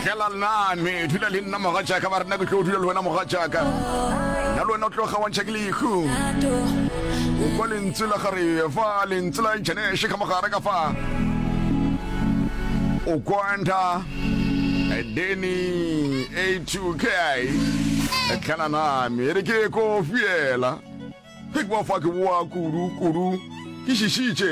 tlela lnane dula le nna moga jaaka ba rena ke tlo dula le wena moga jaaka nna le wena o tlo gawantšha ke lehu o kwa lentswe la gare fa lentswe la janeshe ka mogare ka fa o kwanta deni a two k tlela name re ke ko fiela ke kwa fa ke boa kudu kudu ke šišitše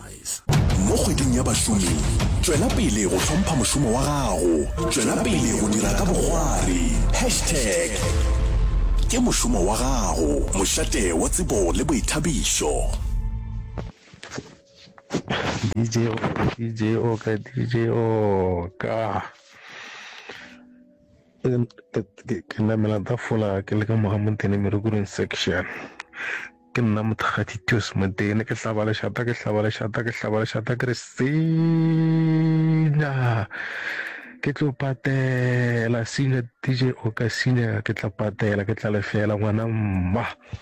Sunrise. Mo Kgweding ya Bašomi, tšwela pele go hlompha mošomo wa gago. Tšwela pele go dira ka bokgwari. Hashtag Ke mošomo wa gago, mošate wa tsebo le boithabišo. DJ Oka, DJ Oka, DJ Oka. Ke namela tafola ke le ka moga mo Ntenemerukuring section. Ke nna Mothakgati Tios Modene, ke hlaba lešata, ke hlaba lešata, ke hlaba lešata, ke re senya! Ke tlo patela, senya DJ o ka senya, ke tla patela, ke tla lefela ngwana mma.